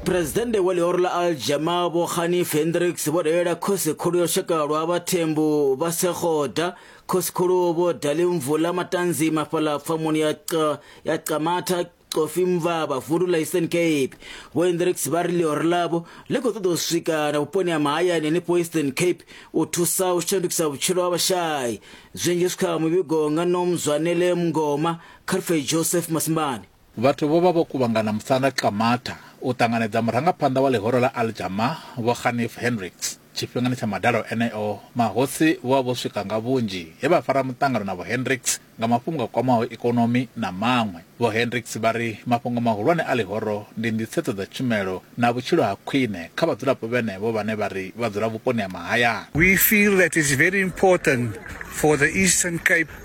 Presidennde wa ḽihoro ḽa Aljama Vho Ghani Fendricks vho dalela khosi khulu ya lushaka lwa vhathembu vha Sekgoda, khosi khulu Vho Dali Mvula Matanzi mafhaḽa pfamoni ya Qa, ya Qamatha Coffee Mvaba vundu ḽa Eastern Cape. Vho Hendricks vha ri ḽihoro ḽavho ḽi khou ṱoḓa u swika na vhuponi ha mahayani henefho Eastern Cape u thusa u shandukisa vhutshilo ha vhashai. Zwinzhi zwi kha muvhigo nga Nomzwanele Mngoma, Carfey Joseph Masimbani. Vhathu vho vha vho kuvhangana musanda Qamatha u ṱanganedza murangaphanḓa wa ḽihoro ḽa Al Jamah Vho Khanif Hendricks. Tshifhingani tsha madalo eneo, mahosi vho vha vho swika nga vhunzhi he vha fara muṱangano na Vho Hendricks nga mafhungo a kwamaho ikonomi na maṅwe. Vho Hendricks vha ri mafhungo mahulwane a ḽihoro ndi nḓisedzo dza tshumelo na vhutshilo ha khwine kha vhadzulapo vhenevho vhane vha ri vha dzula vhuponi ha mahayani. We feel that it's very important for the Eastern Cape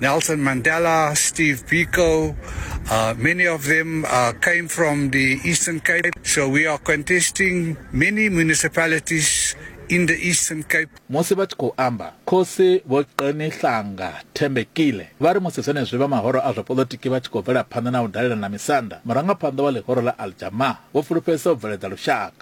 Nelson Mandela, Steve Biko, uh, many of them uh, came from the Eastern Cape. So we are contesting many municipalities in the Eastern Cape. musi vha tshi khou amba khosi vho qenihlanga thembekile vha ri musi zwenezwi vha mahoro a zwa polotiki vha tshi khou bvela phanḓa na u dalela na misanda murangaphanḓa wa ḽihoro ḽa aljama vho fulufhedzisa u bveledza lushaka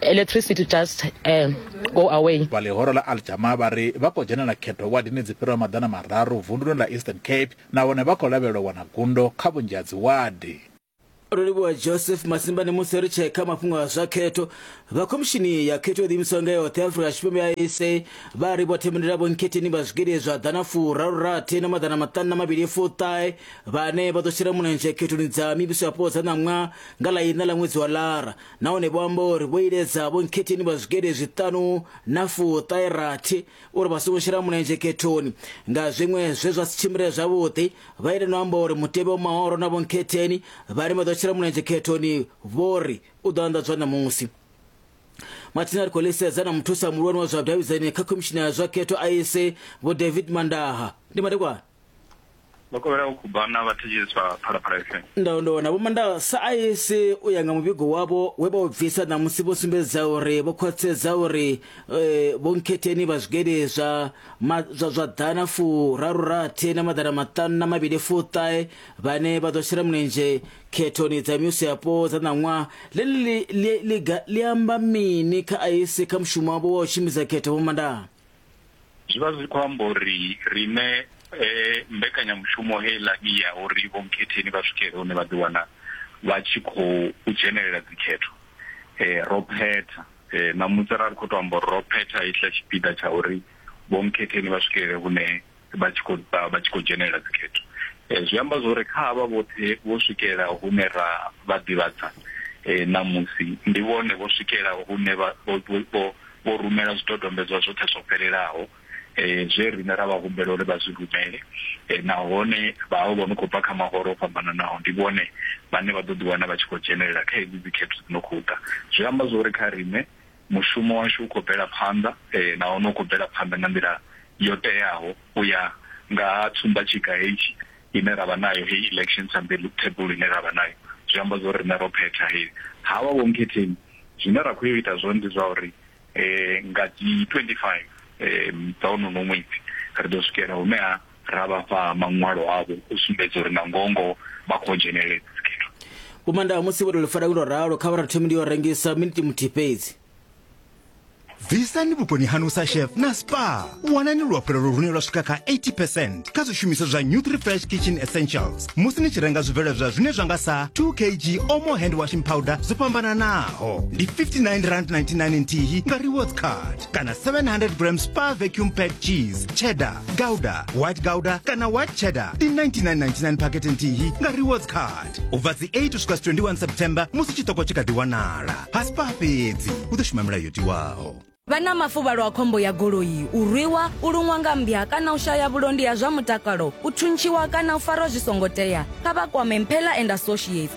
electricity just um, go away vha ḽihoro ḽa aljama vha ri vha khou dzhenela khetho wadini dzi fhiraho maḓana mararu vunduni ḽa eastern cape nahone vha khou lavhelelwa wana gundo kha vhunzhi ha dziwadi rolivhuwa joseph masimbani musi ri tshee kha mafhungo a zwa khetho vha khomishini ya khetho yo ḓiimisaho nga yoṱhe afrika tshipembe ya esa vha ri vho themendela vhonkhetheni vha zwigidi zwa ḓana furarurathi na maḓana maṱanu na mavhili fuṱahe vhane vha ḓo shela mulenzhe khethoni dza mivhiso yapo dza ṋaṅwa nga ḽa iṋa ḽa ṅwedzi wa lara nahone vho amba uri vho iledza vhonkhetheni vha zwigede zwiṱanu na fuṱairathi uri vha songo shela mulenzhe khethoni nga zwiṅwe zwe zwa si tshimbile zwavhuḓi vha ite no amba uri mutevhe wa mahoro na vhonkhetheni vhane vha ḓo shela mulenzhe khethoni vho ri u ḓo anḓadzwa ṋamusi mathina ri khou ḽisedza na muthusa muhulwane wa zwa vhudavhidzani kha khomishini ya zwa khetho a ise vho david mandaha ndi madekwana vha kovhela u khubana vha thetsheleswa phalaphala fm ndaondowa na vhomandala sa aise u ya nga muvhigo wavho we vha u bvisa ṋamusi vho sumbedza uri vho khwaṱhisedza uri eh, vho nkhetheni vha zwigede zwa ma- zwa zwa ḓana furaru rathi na maḓana maṱanu na mavhili fuṱahe vhane vha ḓo shela mulenzhe khethoni dza mivhuso yapo dza ṋaṅwaha ḽeḽi li- li- liga ḽi amba mini kha aise kha mushumo wavho wa u tshimbidza khetho vhomandala zwi vha zwi khou amba uri riṋe eh, mbekanyamushumo heiḽa i ya uri vhomkhetheni vha swikele hune vha ḓiwana vha tshi khou u dzhenelela dzikhetho eh, ro phetha eh, ṋamusi ra ri khou tou amba uri ro phetha hetshiḽa tshipiḓa tsha uri vhomkhetheni vha swikelele hune vha tshi khou ḓa vha tshi khou dzhenelela dzikhetho eh, zwi amba zwori kha havha vhoṱhe vho swikela hune ra vha ḓivhadza eh, ṋamusi ndi vhone vho swikela hune vho rumela zwidodombedzwa zwoṱhe zwo fhelelaho eh, zwe riṋe ra vha humbela uri vha zwi rumele nahone vhaho vho no khou bva kha mahoro o fhambananaho ndi vhone vhane vha ḓo ḓiwana vha tshi khou dzhenelela kha hedzi dzikhetho dzi no khou ḓa zwi amba zwori kha riṋe Mushumo washu u khou bvela phanḓa nahone u khou bvela phanḓa nga nḓila yo teaho u ya nga ha tsumbatshiga hetshi ine ra vha nayo, heyi election timetable ine ra vha nayo. Zwi amba zwo ri riṋe ro phetha he ha vha Vho Mkhetheni. Zwine ra khou yo ita zwone ndi zwa uri nga dzi 25 dza honono ṅwedzi ri ḓo swikela hune ha. ra vha fha maṅwalo avho u sumbedza uri na ngongoho vha khou dzhenelela dzi dzikhetho Vho Mandawa musi vho tou lifara lwo ralo kha vha ri thomi ndi yo rengisa miniti muthihi fhedzi. Bvisani vhukoni hanu sa chef na spa. Wanani luhafhulelo lune lwa swika kha 80% kha zwishumiswa zwa Nutri-Fresh Kitchen Essentials musi ni tshi renga zwibveledzwa zwine zwa nga sa 2 kg Omo Hand Washing Powder zwo fhambananaho. Ndi R59.99 nthihi nga rewards card. kana 700 grams pa vacuum pack cheese cheddar gouda white gouda kana white cheddar ndi 9999 pakete nthihi nga rewards card ubva dzi 8 usvika 21 september musi chitoko chikati wanala pasi pa fhedzi u ḓo shuma milayo tiwaho vha na mafuvhalo a khombo ya goloi u rwiwa u luṅwa nga mmbya kana u shaya vhulondi ha zwa mutakalo u thuntshiwa kana u farwa zwi songo tea kha vha kwame mphela and associates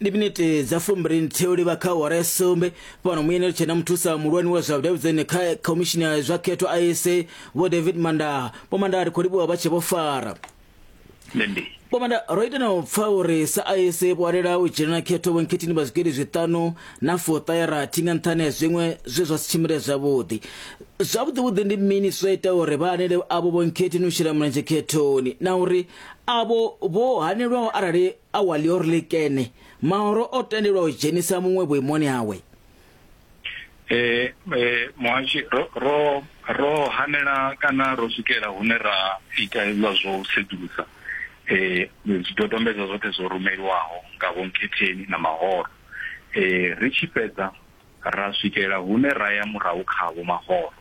ndi minete dza fumbirini thiyo livha kha awara ya sumbe fhano muyenelo tshena muthusa muhulwane wa zwa vhudavhidzani kha khomishini ya zwa khetho isa vho david mandaa vho mandaa ri khou livhuwa vha tshe vho fara Lendi. vho mandaa ro ita na u pfa uri sa isa vho alela u dzhena na khetho vhonkhetini vha zwigidi zwiṱanu na fuṱa ya rathi nga nṱhani ha zwiṅwe zwe zwa si tshimbile zwavhuḓi zwavhuḓivhuḓi ndi mini zwa ita uri vha anele avho vhonkhetini u shela mulenzhe khethoni na uri avho vho hanelwaho arali A wa lior likene, maoro o tendelwa u dzhenisa muṅwe vhuimoni hawe. Eh, eh, muhashi ro ro ro hanela kana ro swikela hune ra ita hezwa zwo u sedzulusa eh zwidodombedzwa zwoṱhe zwo rumeliwaho nga vho Nkhetheni na Mahoro eh ri tshi fhedza ra swikela hune ra ya murahu kha Vho Mahoro,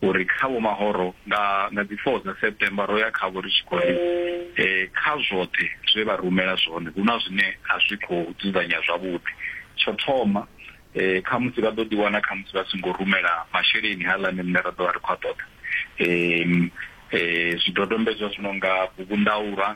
uri kha Vho Mahoro nga nga dzi 4 dza September ro ya khavho ri tshi khou ri kha zwoṱhe zwe vha rumela zwone hu na zwine a zwi khou dzudzanyea zwavhuḓi. Tsho thoma, khamusi vha ḓo ḓiwana khamusi vha songo rumela masheleni haaḽani riṋe ra ḓo vha ri khou a ṱoḓa, zwidodombedzwa zwi no nga bugundauḽa,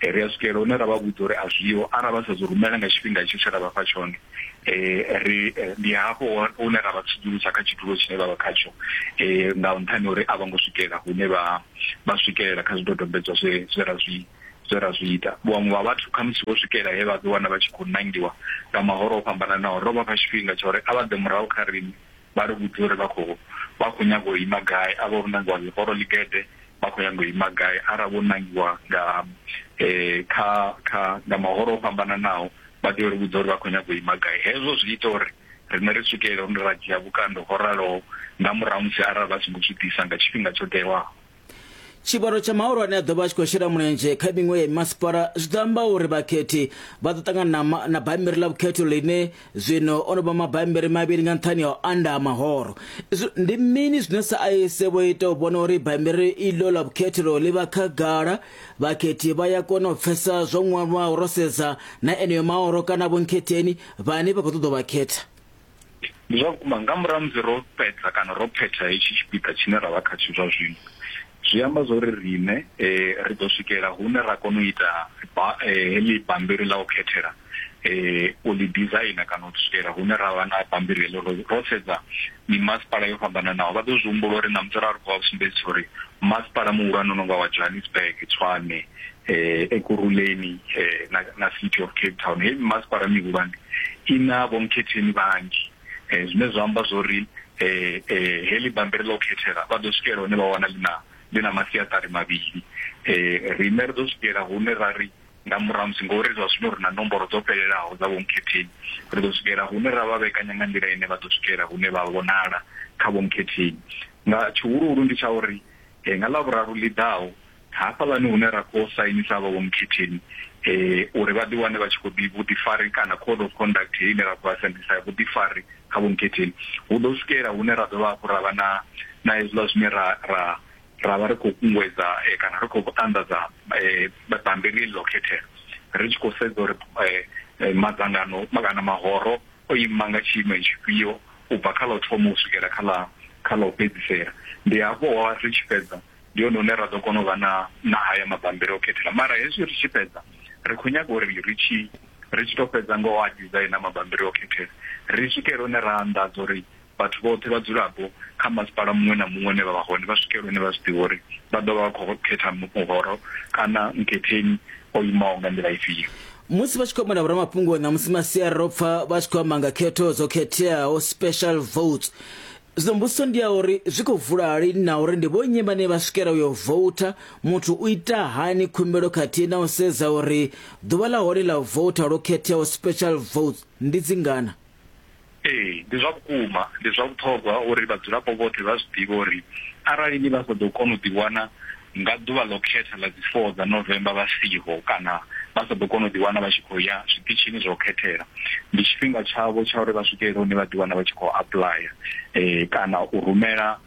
ri a swikelela hune ra vha vhudza uri a zwiho arali vha sa zwi rumela nga tshifhinga itsho tshe ra vha fha tshone um ri ndi hafho hune ra vha tsudzulusa kha tshidulo tshine vha vha khatsho um nga nṱhani uri a vho ngo swikelela hune vha vha swikelela kha zwidodombedzwa zwe zwe ra zwi zwe ra zwi ita vhaṅwe vha vhathu khamusi vho swikela he vha ḓiwana vha tshi khou nangiwa nga mahoro o fhambananaho ro vha fha tshifhinga tsha uri a vha ḓe murahu kha riṋe vha ri vhudze uri vha khou vha khou nyaga u ima gai a vha vho nangiwa ḽihoro ḽigede vha khou nyaga u ima gai arali vho nangiwa nga um kha kha nga mahoro o fhambananaho vha tea uri vhudza uri vha khou nyaga u ima gai hezwo zwi ita uri riṋe ri swikelele hune ra dzhia vhukando ho raloho nga murahu musi arali vha songo zwi ḓisa nga tshifhinga tsho tewaho tshivhalo tsha mahulwane a ḓo vha a tshi khou shela mulenzhe kha miṅwe ya masipala zwi ḓo amba uri vhakhethi vha ḓo ṱangana na bammbiri ḽa vhukhetho ḽine zwino o no vha mabammbiri mavhili nga nṱhani ha u anda ha mahoro ndi mini zwine sa aise vho ita u vhona uri bammbiri iḽo ḽa vhukhethelo ḽi vha khagala vhakhethi vha ya kona u pfesa zwo ṅwalwaho ro sedza na eneyo mahoro kana vhonkhetheni vhane vha khou ṱoḓa vhakhetha ndi zwa vhukuma nga murahu musi ro fhedza kana ro phetha hetshi tshipiḓa tshine ra vha khatsho zwa zwino zwi amba zwa uri riṋe um ri ḓo swikela hune ra kona u ita eh, heḽi bambiri ḽa u khethela um u ḽi designer kana u swikela hune ra vha na bambiri heḽo ro sedza mimasipala yo fhambananaho vha ḓo zwi humbula uri na musi ra ri khou vha sumbedzisa uri masipala muhulwane no nga wa johannesburg tshwane eh ekurhuleni eh na, na city of cape town heyi mimasipala mihulwane i na vhomkhetheni vhanzhi eh zwine zwa amba zwo ri eh eh heḽi bammbiri ḽa u khethela vha ḓo swikela hune vha wana ḽi na ḽi na masiaṱari mavhili eh riṋe ri ḓo swikela hune ra ri nga murahu musi ngori zwa zwino ri na nomboro dzo fhelelaho dza vhomkhetheni ri ḓo swikela hune ra vha vhekanya nga nḓila ine vha ḓo swikela hune vha vhonala kha vhomkhetheni nga tshihuluhulu ndi tsha uri eh, nga ḽavhuraru ḽi ḓaho hafhaḽani hune ra khou sainisa vha vhomukhetheni eh uri vha ḓi wane vha tshi khou ḓi vhuḓifari kana code of conduct heyi ine ra khou asendisa vhuḓifari kha vhomukhetheni hu ḓo swikela hune ra dovha hafhu ra vha na na hezwiḽa zwine ra ra ra vha ri khou kunguwedza eh, kana ri khou anḓadza eh, bammbiri heḽi ḽo khethela ri tshi khou sedza uri eh, eh, madzangano ma- kana mahoro o ima nga tshiimo tshifhio u bva kha ḽa u thoma u swikela kha ḽa kha ḽa u fhedzisela ndi hafho ri tshi fhedza Ndi hone hune ra ḓo kona u vha na na haya mabambiri o khethela mara hezwi ri tshi fhedza ri khou nyaga uri ri tshi ri tshi tou fhedza nga u a dizaina mabambiri o khethela ri swikele hune ra anḓadza uri vhathu vhoṱhe vhadzulapo kha masipala muṅwe na muṅwe une vha vha hone vha swikele hune vha zwi ḓivha uri vha ḓo vha vha khou khetha muhoro kana mkhetheni o imaho nga nḓila ifhio musi vha tshi khou amba na vhoramafhungo ṋamusi masiari ro pfa vha tshi khou amba nga khetho dzo khetheaho special votes Zwino mbudziso ndi ya uri zwi khou vula lini na uri ndi vhonnyi vhane vha swikela u yo voutha, muthu u ita hani khumbelo khathihi na u sedza uri ḓuvha ḽa hone ḽa u voutha lwo khetheaho, special votes, ndi dzingana. Ee, ndi zwa vhukuma. Ndi zwa vhuṱhogwa uri vhadzulapo vhoṱhe vha zwi ḓivhe uri arali ni vha sa ḓo kona u ḓiwana Nga ḓuvha ḽo khetha ḽa dzi 4 dza November vha siho kana vha sa ḓo kona u ḓiwana vha tshi khou ya zwiṱitshini zwa u khethela. Ndi tshifhinga tshavho tsha uri vha swikelele hune vha ḓiwana vha tshi khou apuḽaya kana u rumela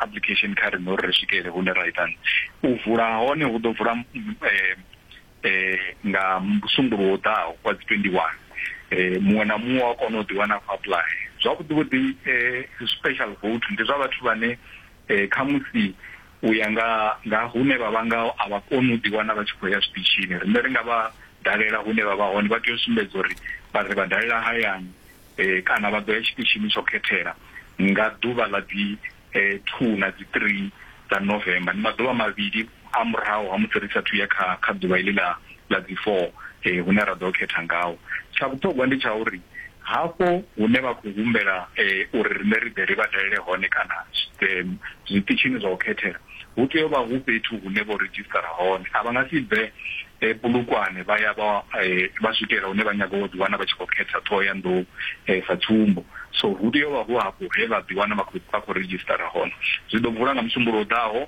apuḽikhesheni kha riṋe uri ri swikelele hune ra ita. U vula ha hone hu ḓo vula nga Musumbuluwo u ḓaho wa dzi 21. Muṅwe na muṅwe u a kona u ḓiwana a khou apuḽaya. Zwavhuḓi vhuḓi special vote ndi zwa vhathu vhane eh, khamusi u ya nga nga hune vha vha ngaho a vha koni u ḓiwana vha tshi khou ya zwiṱitshini riṋe ri nga vha dalela hune vha vha hone vha tea u sumbedza uri vha ri vha dalela hayani eh, kana vha ḓo ya tshiṱitshini tsho khethela nga ḓuvha ḽa dzi eh, two na dzi three dza november ndi maḓuvha mavhili A murahu ha musi ri sa athu ya kha kha ḓuvha iḽi ḽa ḽa dzi 4 hune ra ḓo khetha ngaho, tsha vhuṱhogwa ndi tsha uri hafho hune vha khou humbela uri riṋe ri ḓe ri vha dalele hone kana zwiṱitshini zwa u khethela, hu tea u vha hu fhethu hune vho redzhisṱara hone. A vha nga si bve Polokwane vha ya vha vha swikela hune vha nyaga u ḓiwana vha tshi khou khetha Ṱhohoyanḓou sa tsumbo. So hu tea u vha hu afho he vha ḓiwana vha khou vha khou redzhisṱara hone. Zwi ḓo vula nga Musumbulowo ḓaho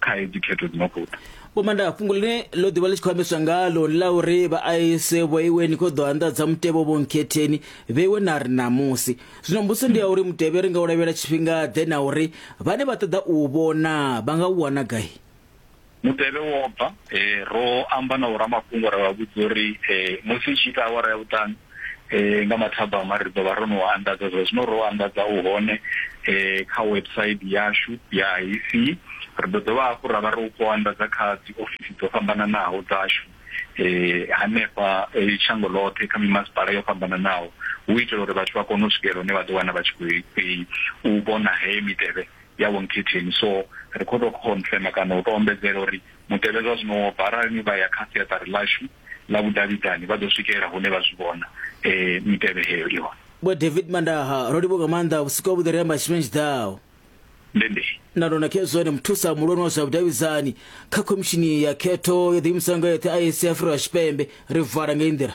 kha hedzi khetho dzi no khou ḓa vho manda fhungo ḽine ḽo ḓivha ḽi tshi khou ambeswa ngalo ḽa uri vha aise vhoiwe ni khou ḓo anḓadza mutevhe wo nkhetheni vheiwe na ri ṋamusi zwino mbuso ndi ya uri mutevhe ri nga u lavhelela tshifhinga ḓe na uri vhane vha ṱoḓa u vhona vha nga u wana gai mutevhe wo bva eh, ro amba na vhoramafhungo ra vha vhudza uri eh, musi i tshi ita awara ya vhuṱanu eh nga mathabama ri ḓo vha ro no anḓadza zwa zwino ro anḓadza u hone eh kha website yashu ya IC ri ḓo dovha hafhu ra vha ro khou anḓadza kha dzi ofisi dzo fhambananaho dzashu eh hanefha eh, shango ḽoṱhe kha mimasipala yo fhambananaho hu itela uri vhathu vha kone u swikelela hune vha ḓo wana vha tshi khou i- u vhona heyo mitevhe ya wonkithini so ri khou tou confirma kana u tou ombedzela uri Mutevhe zwa zwino wo bva. Arali ni vha ya kha siaṱari ḽashu ḽa vhudavhidzani vha ḓo swikelela hune vha zwi vhona. Mitevhe heyo i hone. Vho David Mandaha, Ro livhuwa nga maanḓa vhusiku havhuḓi ri amba tshifhinga tshi ḓaho. Ndi ndi. Na Lona Khezwane, Muthusa muhulwane wa zwa vhudavhidzani kha Khomishini ya Khetho yo ḓiimisaho nga yeṱhe, IEC, ya Afrika Tshipembe. Ri vala ngei nḓila.